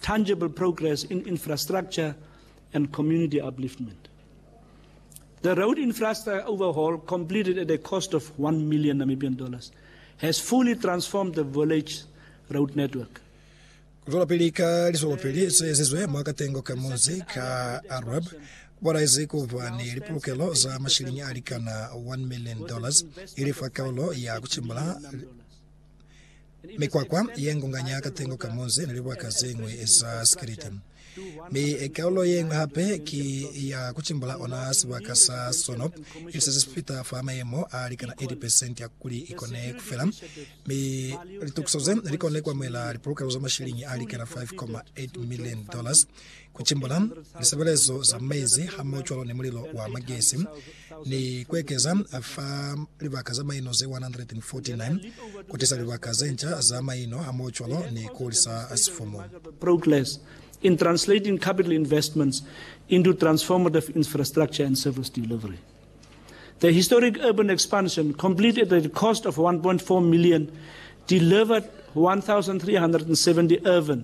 tangible progress in infrastructure and community upliftment. The road infrastructure overhaul completed at a cost of 1 million Namibian dollars has fully transformed the village road network. Zwelapili ka liswelopili se ezizwe mwa katengo ka munzi ka Arab kwalaizi ku ba ni lipulukelo za mashiliñi a likana 1 million dollars ili fa kaulo ya ku cimbula Mikwakwa ye ngunganya katengo ka munzi ni libaka ze ñwi za sikiliti. Mi kaulo ye ñwi hape ki ya ku cimbula ona sibaka sa sono, ili se si fita fa mayemo a likana 80 pesenti ya kuli i kone ku fela, mi litukiso ze li kone ku amuhela lipolokelo za mashiliñi a likana 5.8 milioni dollars. ku cimbula lisebelezo za mezi hamohocwalo ni mulilo wa magesi, ni ku ekeza fa libaka za maino ze 149, ku tisa libaka ze nca za maino hamohocwalo ni ku hulisa sifumu. progress in translating capital investments into transformative infrastructure and service delivery. The historic urban expansion, complete at a cost of 1.4 million, delivered 1,370 urban,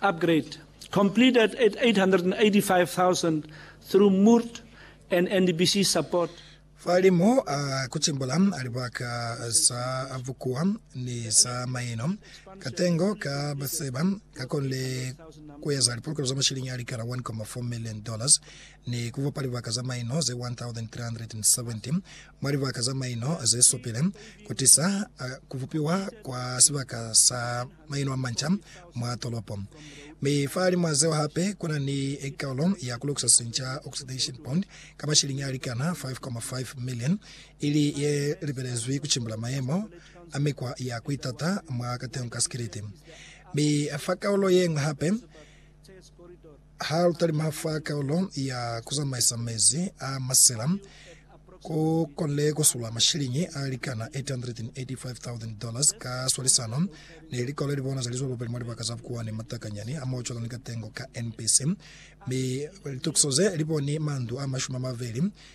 upgrade completed at 885,000 through murt and NDBC support. Fa limo a kucimbula libaka za bukuwa ni za maino, katengo ka baseba kakonile kueza lipolokelo za mashiliñi a likala 1.4 million dollars ni kubupa libaka za maino ze 1,370 mwa libaka za maino zesupile kutisa kubupiwa kwa sibaka sa maino a manca mwa tolopo. Mi fahalimwa zeo hape kuna ni ekalo ya kulukisa sinca oxidation bond ka mashiliñi alikana 5.5 million, ili ye lipelezwi kucimbula mayemo a mikwa ya kuitata mwa kateho ka sikiliti. Mi fa kaulo yeñwi hape, Ha lu talima fa kaulo ya ku zamaisa mezi a masela, ku konile ku sula mashiliñi a likana 885,000 dollars ka swalisano ni likolo ili bona za lizo lubeli mwa libaka za Bukuwa ni Matakanyani a Mocola ni Katengo ka NPC, mi litukiso ze li boni mandu a mashumi a mabeli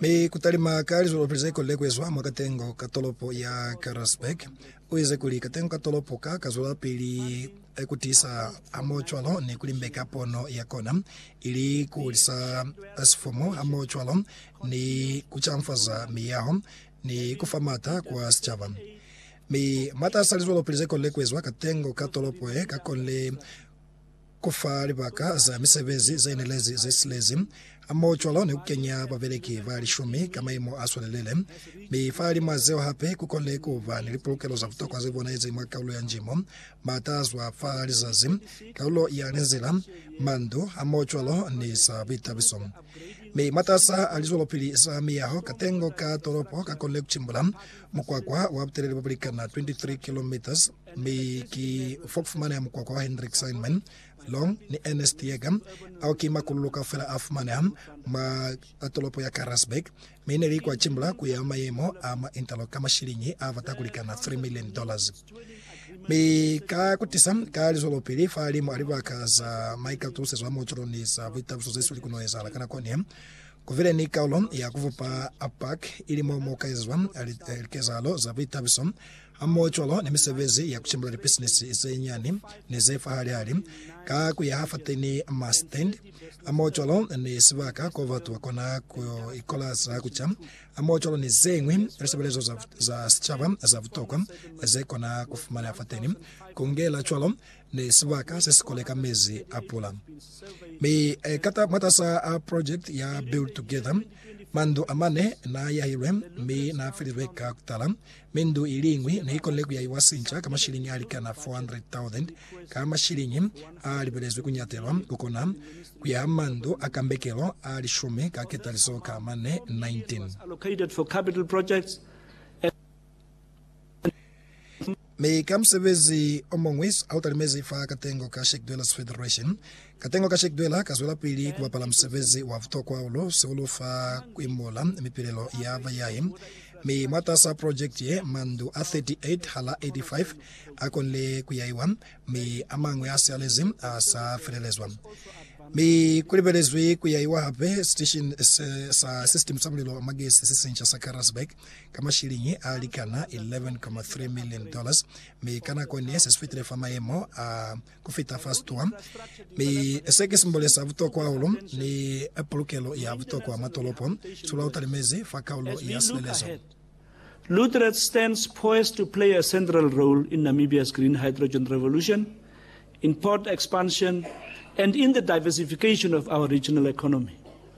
Mi kutalima ka lizwelopili ze kolile kuezwa mwa katengo ka tolopo ya Karasburg, uize kuli, Katengo ka tolopo ka ka zwelapili kutiisa hamohocwalo ni kulimbeka pono ya kona, ili kuhulisa sifumu hamohocwalo ni kucanfaza miyaho ni kufa maata kwa sicaba. Mi mwataas'a lizwelopili ze kolile kuezwa, katengo ka tolopo ye ka konile kuiza ku fa libaka za misebezi ze nelezi ze silezi, hamoho cwalo ni ku kenya babeleki ba lishumi ka maimo a swalelele. Mi fahalimw'a zeo hape, ku konile ku ba ni lipulukelo za butokwa ze bonahezi mwa kaulo ya njimo, m'ata a zwa fa lizazi, kaulo ya linzila, mandu, hamoho cwalo ni za buitabiso. Mi mataasa a lizwelopili za miyaho katengo ka tolopo ka konile ku cimbula Mukwakwa wa butelele bo bulikana 23 kilometres, mi ki fa ku fumaneha mukwakwa wa Hendrik Sandman, Long ni Ernest Yeager, ao ki makululu kaufela a fumaneha mwa tolopo ya Karasburg, mi ne li kwa cimbula ku ya mayemo a mwa Interlock ka mashiliñi a bata ku likana 3 million dollars. Mi ka kutisa ka lizwelopili fahalimu a libaka za maikatusezo a muocolo ni za buitabuso ze sili ku no ezahala ka nako ni Ku bile ni kaulo ya ku bupa Park, ili mo mu ka ezwa likezahalo za buitabiso hamohocwalo ni misebezi ya ku cimbula lipisinisi ze nyani ni ze fahali-hali, ka ku yaha fateni ma stand hamohocwalo ni sibaka ko batu ba kona ku ikola za ku ca, hamohocwalo ni ze ñwi lisebelezo za sicaba za butokwa ze kona ku fumaneha fateni. Ku ngela cwalo, ni sibaka se si koleka mezi a pula. Mi kata mwatasa a project ya Build Together, mandu amane na yahilwe mi na felilwe ka kutala, mi ndu iliñwi ne ikonile kuyahiwa sinca ka mashilingi alikana 400,000 ka mashilingi a libelezwi kunyatelwa kukona kuyaha mandu a kambekelo a lishumi ka ketalizo ka mane 19. Mi ka musebezi omuñwi autalimezi fa katengo ka Sheikh Dwellers Federation, katengo ka Sheikh Dweller kazwelapili kubapala musebezi wa butokwa hahulu sihulu fa kuimbula mipilelo ya bayahi. Mi mwatasaa project ye, mandu a 38 hala 85 akonile kuyaiwa, mi amañwi asialezi asafelelezwa. Mi kulibelezwi kuyaiwa hape station sa system sa mulilo wa magesi sesinca sa Karasburg ka mashiliñi a likana 11.3 million dollars, mi ka nako ne se si fitile fa mayemo a ku fita fa situwa. Mi se ki simbole sa butokwa hahulu ni pulukelo ya butokwa mwa tolopo. Sula u talimezi fa kaulo ya silelezo. Lutret stands poised to play a central role in Namibia's green hydrogen revolution, in port expansion, and in the diversification of our regional economy.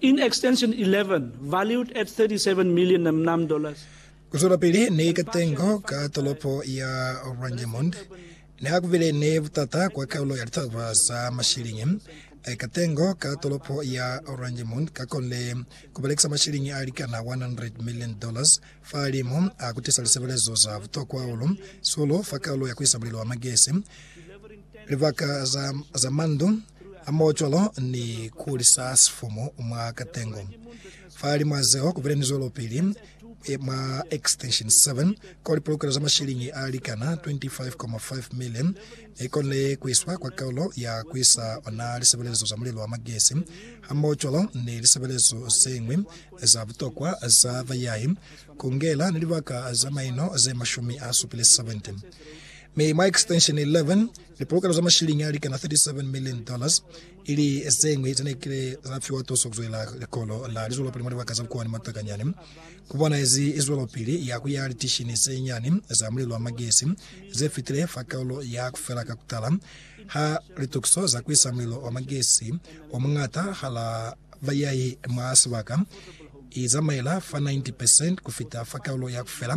In extension 11, valued at 37 million namnam dollars. Kuzwelapili ni katengo ka tolopo ya Ranjemund neakubile ni butata kwa kaulo ya litaba za mashilingi. Katengo ka tolopo ya Ranjemund kakonile kubalekisa mashilingi alikana 100 million dollars fahalimu a kutisa lisebelezo za butokwa hahulu, sulu, fa kaulo ya kuisa mulilo wa magesi. Libaka za, za mandu a maocolo ni ku lisa sifumu mwa katengo. Fa limwa zeo ku bile ni zwelopili e, mwa Extension 7, ko lipolokelo za mashiliñi a likana 25.5 million ne konile ku iswa kwa kaulo ya ku isa ona lisebelezo za mulilo wa magesi hamaocolo ni lisebelezo zeñwi za butokwa za bayahi, ku ngela ni libaka za maino ze mashumi a supile 70. Mi mwa Extension 11, lipolokelo za mashilingi a likana 37 million dollars ili zeñwi zene kile za fiwa tuso kuzwelela likolo la lizwelopili mwa libaka za bukuwani Matakanyani. Ku bonahezi zwelopili ya kuyaha litishini ze nyani za mulilo wa magesi ze fitile fa kaulo ya kufela ka kutala ha litukiso za kuisa mulilo wa magesi o muñata hala bayahi mwa sibaka i zamaela fa 90% kufita fa kaulo ya kufela